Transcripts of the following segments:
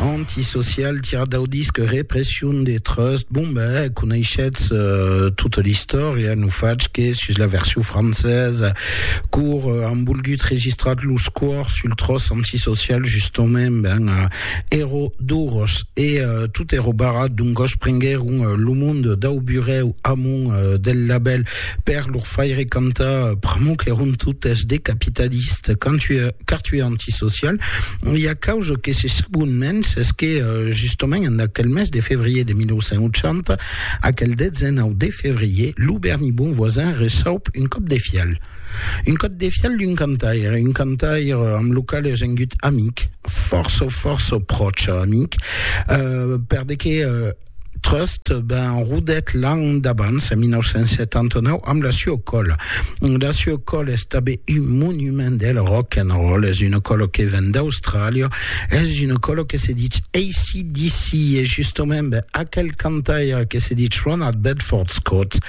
Antisocial, tirar dau disc Repression de Trust, bon ben, coneishetz tota l'istòria, non fach que sus la version francesa, cor an volgut registrar los cors sul tròç Antisocial, justament, ben, èro doros, e tot èro barrat, doncòs prenguèron lo monde dau burèu amont del labèl, Per lor faire cantar pr'amor qu'èron totes de capitalistes, qu'artui antisocial, e a causa que se sabon mens es que justament en aquel mes de fevrier de 1980, aquel 19 de fevrier, lo Berni Bonvoisin resaup un còp de fial. Un còp de fial d'un cantaire, un cantaire amb lo qual es engut amic, fòrça, fòrça pròche amic, per de que Trust ben rodet l'an d'abans, en 1979, amb la Sue Call. La Sue Call es tabé un monument del rock and roll, es una colo que ven d'Austràlia, es una colo que se ditz ACDC, e justament ben, aquel cantaire que se ditz Ronald Bedford Scott,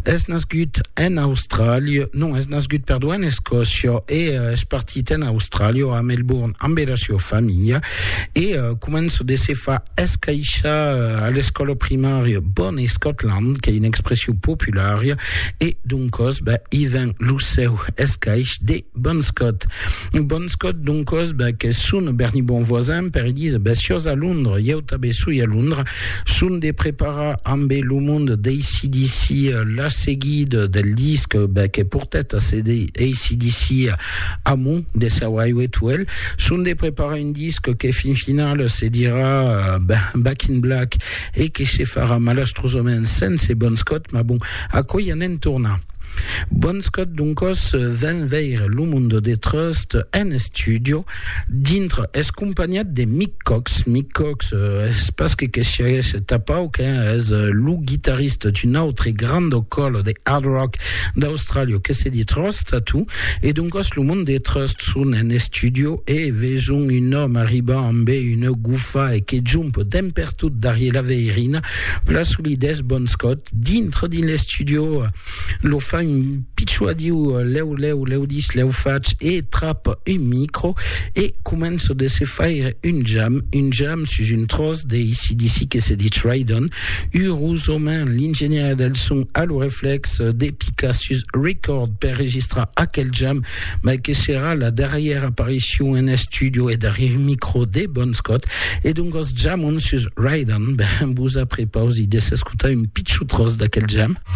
Es nascut en Austràlia, non, es nascut, perdó, en Escòcia e uh, es partit en Austràlia, a Melbourne, amb era sua familha e uh, començo de se fa escaixar uh, a l'escòla primària Bon Scotland, qu'ei una expression populària e doncòs, ben, i ven lo seu escaix de Bon Scott. Bon Scott, doncos, ben, qu'es son Bernie Bonvoisin, per Elisa, ben, siós a Londra, ieu tanben soi a Londra, son de preparar ambe lo mond d'ACDC la seguida del disc, ben, que portèt a CD, ACDC Amo, de Sir Highway to Hell, son de preparar un disc que fin final se dirà, ben, Back in Black, e que se farà malastrosament sense Bon Scott, mas bon, aquò i anem tornar. Bonskòt doncòs ven veire lo Mundo de Trust en estudio dintre es companhat de Mick Cox. Mick Cox es pas que que siaguèsse tapau que es lo guitarrista d'un autre grando còlo de hard rock d'Austràlia que se di Trust Tattoo e doncòs lo Mundo de Trust son en estudio e veson un òme arribar ambe una gufa e que jump dempertot darrier la veirina Vla solidés bons còt dintre dins l'estudio lo fa un pichua diu lèu lèu lèu dis lèu fach e trap un micro e començo de se faire un jam un jam sus un tros de ACDC que se dich Rydon urosament l'ingenièr del son a lo reflex de picar sus record per registrar aquel jam mai que serà la darrièra aparicion en estudio e darrièr micro de Bon Scott, e doncas jamon sus Ride On, ben vos aprepausi de s'escotar un pichon tros d'aquel jam.